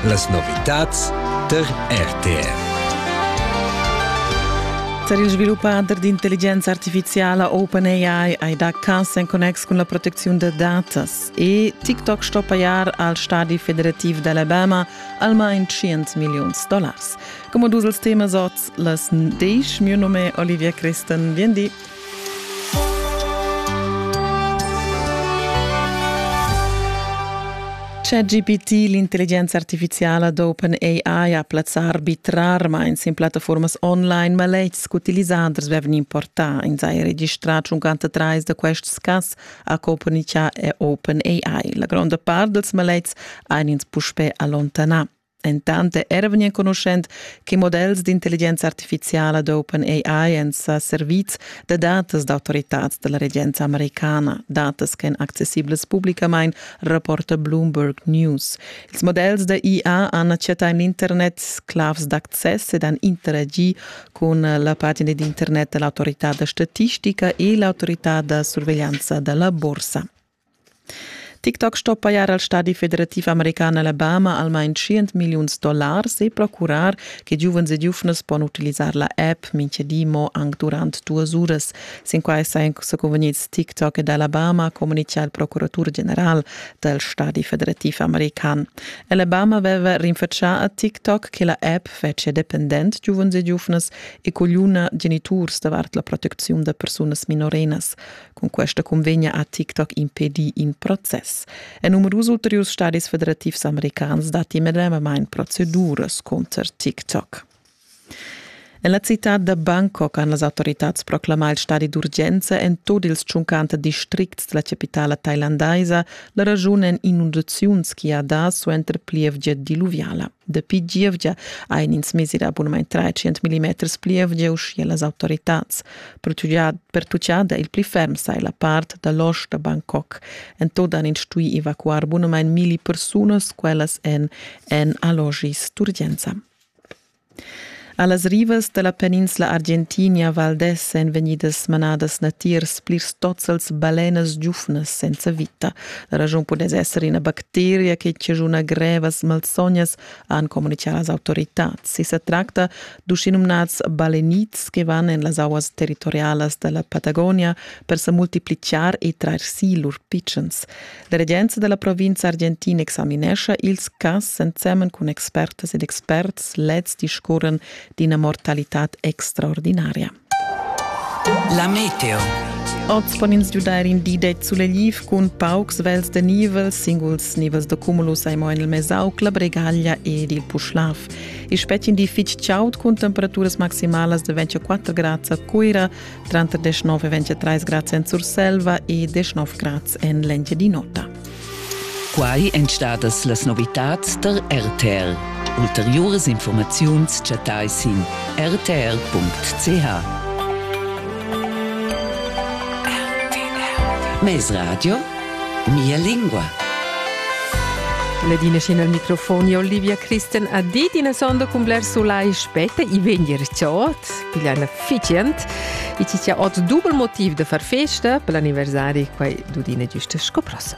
Las novitads tar RTR. Per il sviluppader d'intelligenza artificiala OpenAI hai dà cas en connex cun la protecziun da datas e TikTok sto pajar al stadi federativ d'Alabama almain 100 milliuns dollars. Come dus els temas oz, las 10 mio nome Olivia Christen, bien di. ChatGPT, l'intelligenza artificiala d'OpenAI ha plazzà arbitrarmain sin plattaformas online, ma lezs utilisaders vevan importà. Ins ha registrà 53 da quests cas a Copernica e OpenAI. La gronda part dals malets han ins puspè allontanà. Entant era vegnì enconuschent che models d'intelligenza artifiziala d'OpenAI èn sa servids da datas d'autoritads da la regenza americana, datas ch'èn accessiblas publicamain, rapporta Bloomberg News. Ils models da IA han chattà en l'internet sclavs d'access ed han interagi cun la pagina d'internet da l'autorità da statistica e l'autorità da surveglianza da la borsa. Tic-tac sto pajar al stadi federativ american Alabama almain tschient milliuns dollars e procurar che giuvens e giuvnas pon utilisar la app mintgadi mo anc durant duas uras. Sin quai sajan sa convegnids Tic-tac ed Alabama, communitga il procuratur general dal stadi federativ american. Alabama aveva rinfatschà a Tic-tac che la app fetschia dependent giuvens e giuvnas e cogliuna geniturs davart la protecziun da persunas minorenas. Cun questa convegna ha TikTok impedì in process. E numerus ulteriurs stadis federativs americans datti medemamain proceduras cunter TikTok. En la citad da Bangkok han las autoritads proclamà il stadi d'urgenza en tut ils tschuncanta districts della capitala thailandaisa la ragiun en inundaziuns che ha dà suenter plievgia diluviala. Dapi gievgia ein ins mesi da abunament 300 millimeters pli evgiu sche las autoritads. Pertuccada il pli ferm sa la part da losch da Bangkok. En tot han ins stui evacuar bunamein milli persunas, quellas en en allogis d'urgenza. A las rivas da la peninsla Argentinia Valdez èn vegnidas manadas natiers plirs tozzels balenas giuvnas senza vita. La raschun pudess esser ina bacteria che chaschuna grevas malsognas, han communitgà las autoritads. I sa tracta d'uschinumnads balenits che van en las auas territorialas da la Patagonia per sa multiplicar e trair si lur pitschens. La regenza della provincia argentina examinescha ils cas ensemen cun expertas ed experts leds discurren d'ina mortalitad extraordinaria. La meteo. Oz pon ins giudair in di det sulegl cun paucs vels de nivel, singuls nivels de cumulus ai mo en il Mesauc, la Bregaglia ed il Puschlav. I spettin di fitg chaud cun temperaturas maximalas de 24 grads a Cuira, tranter 19 e 23 grads en Surselva e 19 grads en l'Engiadin'Ota. Quai èn stadas las novitads da RTL. Ulteriuras informaziuns chattai sin rtr.ch. Mes Radio, mia lingua. Ledine scena al microfoni Olivia Christen a dit in sondo cum bler sulai spette i vegni rciot. piglia ina fitgient. E ti sia ot dubel motiv da far festa per l'anniversari quai dudina giusta sco prossa.